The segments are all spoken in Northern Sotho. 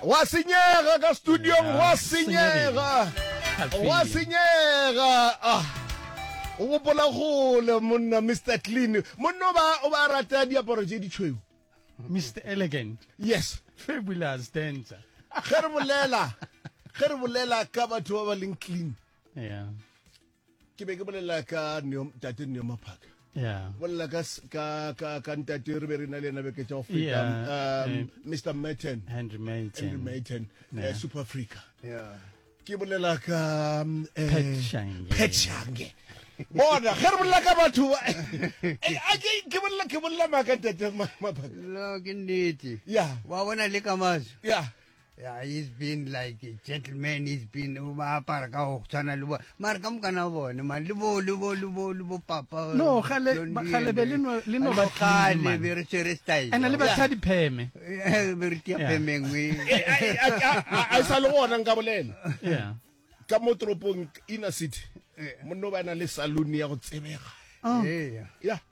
gwa senyega ka studiong gwa senyega gwa senyega ah o gopola gole monna mr clean monna o ba o ba rata diaparo tse ditshweu mr elegant yes fabulous dancer ge re bolela ge re bolela ka batho ba ba leng clean yeah ke be ke bolela ka tate neo maphaka bolela ka ntate re be re na le ena beke tsa go feta mr um, merton henry merton eh, super africa ke bolela ka um, eh, petshange bona ge re bolela ka batho ke bolela ke bolela maaka ntate maphaka ke nnete wa bona le ka maso Yeah, he's been like a gentleman, he's been ba apara ka go tshwana le bo mara ka mokana bone man le bo le bo le bo le bo papa. No, gale gale be le no le no ba gale be re tsere style. Ana le batsa di pheme. Eh, be re tia phemeng we. A sa le gona nka bolela. Yeah. Ka mo tropong inner city. Eh. Monno ba na le saloon ya go tsebega. Oh. Yeah. Yeah.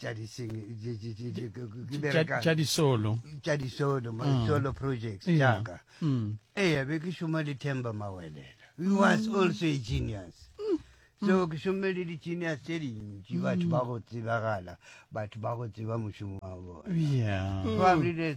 tša diseng tša disolo tša disolo ma mm. solo projects jaaka mm. eya be ke šoma le temba mawelela he was mm. also a genius so ke šomme le di-genius tše dintši batho ba go tsebagala batho ba go tseba mošomo wa bona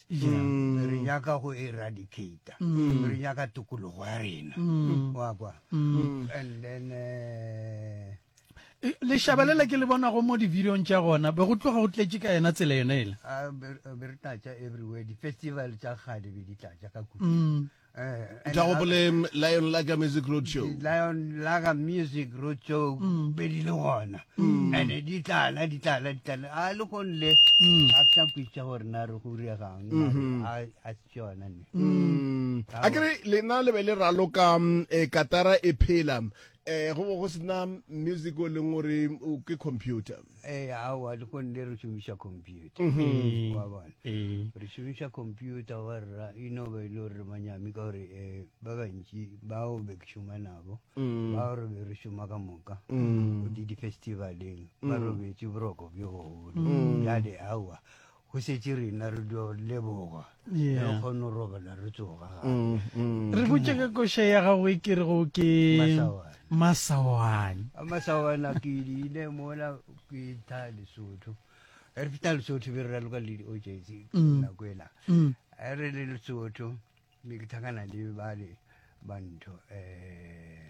Mm. re nyaka go eradicata mm. re nyaka tokologo ya rena mm. wa kwa and then eh, e, leshabelela ke le bonago mo di-videong tša gona be go tloga go tletše ka yena tsela yone ele ah, be re tlatša everywhere di-festival tša kgale be di tlatša ka kudu tla gopoleng lion laga music road show lion laga music road show pedi le gona ande di tlala di tlala di tlala a le go nle a tsa kwitsa gore na re go regang a a tsona ne a kere lena le be le raloka e katara e phela eh go go sena music o leng gore ke computer Ee, aowa, lekong le re šomiša computer. Mm-hmm. Wa bona? Ee. Re šomiša computer wa rra, e no be e le gore manyami ka gore um ba bantši bao be ke šoma nabo, mm. bao re be re šoma ka moka, mm. di di-festivaleng, ba mm. robetše boroko bjo bogolo. Bjale aowa, Go šetše rena re dio leboga, re Yeah. kgone go robala re tsoga gape. Mm, mm. Re botše ka koša ya gago e ke rego ke Masawana. masawana. A masawana ke ile mola ke tla lesotho re feta lesotho be re raloka le di-ogency Mm. nako ela Mm. a re le lesotho be ke tlhakana le bale bantho um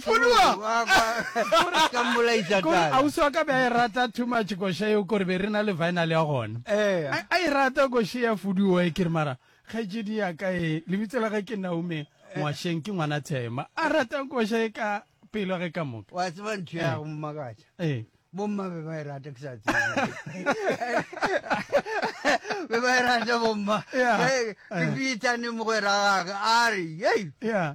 Fuduwa! Kore ka mmolaisa Kore tala. ausi wa ka be a e rata too much koša eo kore be re na le vinyl ya gona. Eya. A a e rata koše ya Fuduwa e kere mara kgaetšedi ya ka e lebitso la ge ke Naume Ngwasheng ke ngwana Thema. A rata koša e ka pelo ge ka moka. Wa tseba ntho ya Eh. go mmakatša. Eh. Bomma be ba e rata ke sa tsebe. Be ba e rata bomma. Yeah. Ke- Ke Eh. fitane mogwera gage a re, "Yei, Yeah.